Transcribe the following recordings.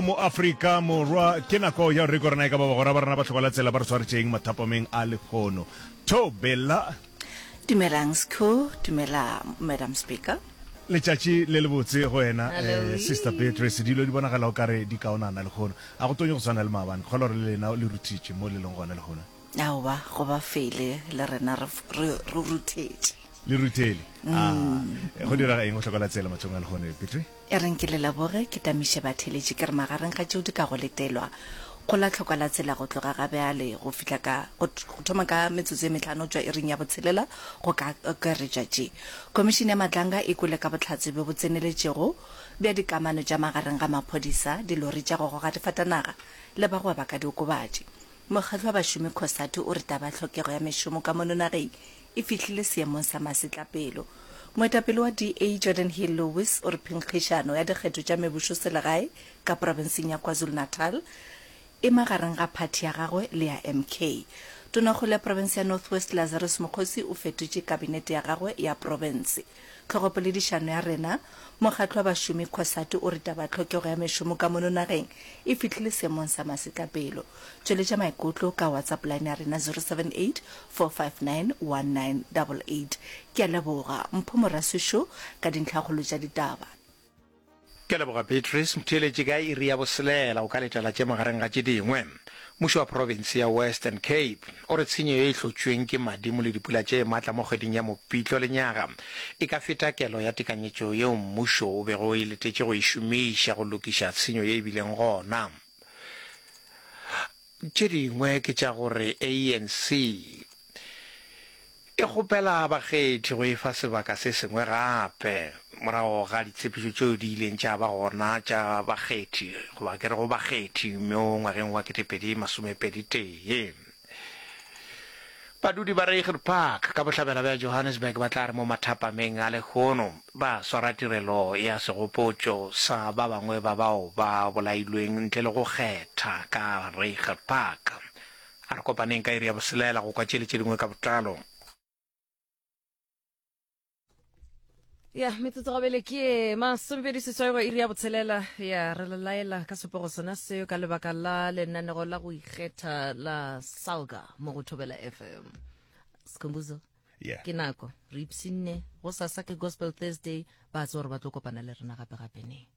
Mo Afrika Morwa ke nako ya gore rena e ka ba bagora ba rena ba tlhokola tsela ba re tshwaretšeng mathapameng a lekgono. Thobela. Dumelang Sco, dumela Madam Speaker. Letšatši le le botse go wena eh, Sister Beatrice. Dilo di bonagala o kare di kaonana lekgono. A go tonye go tshwana le maabane. Kgolwa gore le lena le ruthitše mo le leng gona lekgono. Aowa, go ba fele le rena re f- re re ruthetše. Le ruthele. Ah, go direga eng go hlokola tsela mathong a lekgono Beatrice? E reng ke le leboge, ke tamiše batheeletši ke re magareng ga tšeo di ka go letelwa, go la tlhokwa la tsela go tloga ga bjale go fihla ka, go thoma ka metsotso ye mehlano go tšwa iring ya botshelela go ka akaretša tše Khomišene ya Matlanga e kwele ka bohlatse bjo bo tseneletšego bja dikamano tša magareng ga maphodisa, dilori tša go goga difatanaga le bagwebakadiokobatši. Mokgatlo wa bašomi Cosatu o re taba ya tlhokego ya mešomo ka mono nageng e fihlile seemong sa masetlapelo. Moetapele wa DA, Jordan Hill-Lewis o re phenkgišano ya dikgetho tša mebusoselegae ka profenseng ya KwaZulu-Natal e magareng ga phathi ya gagwe le ya MK. Tonakgolo ya profense ya North West, Lazarus Mokgosi o fetotše kabinete ya gagwe ya profense. Tlhogopoledišano ya rena, Mokgatlo wa Bašomi Cosatu o re taba tlhokego ya mešomo ka mono nageng e fihlile seemong sa masetlapelo. Tšweletša maikutlo ka WhatsApp line ya rena 0784591988. Ke a leboga Mpho Moraswisho ka dintlhakgolo tša ditaba. Ke leboga Beatrice Mtheeletši ka iri ya boselela o ka letela tše magareng ga tše dingwe. Mmušo wa province ya Western Cape o re tshenyo ye e hlotšweng ke madimo le dipula tše matla mo kgweding ya Mopitlo le nyaga e ka feta kelo ya tekanyetšo yeo mmušo o bego o e letetše go e šomiša go lokiša tshenyo ye e bileng gona. Tše dingwe ke tša gore ANC e kgopela bakgethi go e fa sebaka se sengwe gape morago ga ditshepišo tšeo di ileng tša ba gona tša bakgethi goba ke re go bakgethi mo ngwageng wa 2021. Badudi ba Reiger Park ka bohlabela bja Johannesburg ba tla re mo mathapameng a lehono ba swara tirelo ya segopotšo sa ba bangwe ba bao ba bolailweng ntle le go kgetha ka Reiger Park. A re kopaneng ka iri ya boselela go kwa tšele tše dingwe ka botlalo. ya metsotso gabele ke masomepedi seswai go iri ya botshelela ya re lelaela ka sepogo sona seo ka lebaka la lenanego la go ikgetha la salga mo go thobela fm sekhombuzo yeah. ke nako re ipsinne go sasa ke gospel thursday ba tse gore ba tlo kopana le rena gape gape ne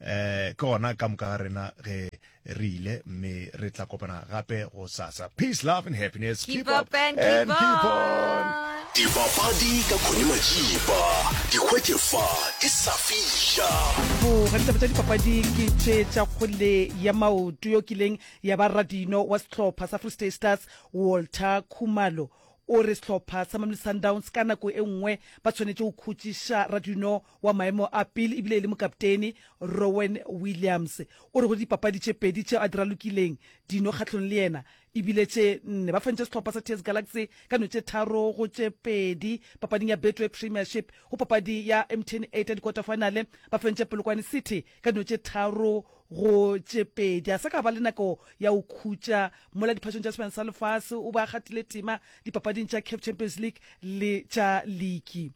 Eh, ke gona ka moka ga rena ge re ile mme re tla kopana gape go sasa peace love and happiness keep, keep up, up and, and keep, keep on, on. dipapadi ka khone majiba dikgwetše fa di sa fiša boga ditaba tša dipapadi ke tše tša kgole ya maoto yo kileng ya ba radino wa sehlopha sa free state stars walter khumalo o re sehlopha sa mamli sundowns ka nako e nngwe ba tshwanetše go khutšiša radino wa maemo a pele e bile e le mokaptene, Rowen Williams, o re go dipapadi tše pedi tšeo a di ralokileng dino kgahlong le yena e bile tše nne. Ba fentše sehlopha sa TS Galaxy ka no tše tharo go tše pedi papading ya Betway Premiership. Go papadi ya MTN 8 ya dikwaterfinale, ba fentše Polokwane City ka no tše tharo go tše pedi. A sa ka a ba le nako ya go khutša mola diphašong tša Sehlophana sa Lefase, o be a gatile tema dipapading tša Caf Champions League le tša liki.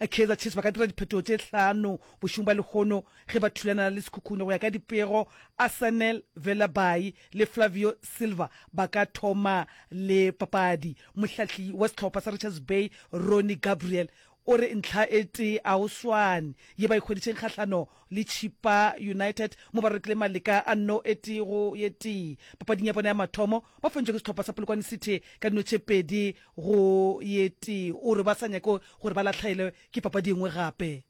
A Kaizer Chiefs ba ka dira diphetogo tše hlano bošegong bja lehono ge ba thulana le Sekhukhune. Go ya ka dipego, Asanel Velabayi le Flavio Silva ba ka thoma le papadi. Mohlahli wa sehlopha sa Richards Bay, Ronnie Gabriel, o re ntlha e tee a go swane ye ba e hweditšeng kgahlano le Chippa United mo ba rekile maleka a nno e tee go ye tee papading ya bona ya mathomo. Ba fontšwe ke sehlopha sa Polokwane City ka dino tše pedi go ye tee. O re ba sa nyake gore ba lahlaelwe ke papadi e nngwe gape.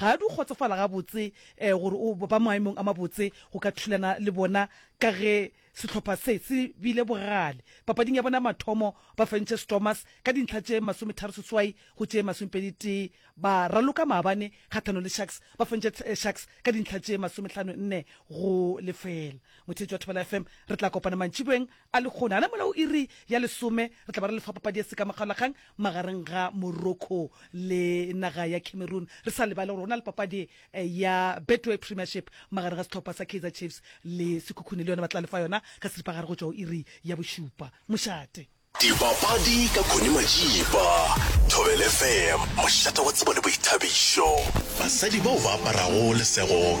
Ga a di kgotsofala gabotse gore o ba maemong a mabotse go ka thulana le bona ka ge sehlopha se se bile bogale papading ya bona ya mathomo ba fentše Stormers ka dintlha tše masometharo seswai go tše masomepedi tee ba raloka maabane kgathano le Sharks ba fentše Sharks ka dintlha tše masomehlano nne go lefela. Motheetši wa Thobela FM re tla kopana mantšiboeng A le kgone? A na mola o iri ya lesome re tla ba re le fa papadi ya sekamokgalakgang magareng ga Morocco le naga ya Cameroon, re sa lebale gore go na le papadi eh, ya Betway Premiership magareng ga sehlopha sa Kaizer Chiefs le Sekhukhune, le yona ba tla le fa yona ka seripagare go tšwa go iri ya bošupa mošate. Dipapadi ka Connie Majiba, Thobel FM, mošate wa tsebo le boithabišo. Basadi bao ba aparago lesego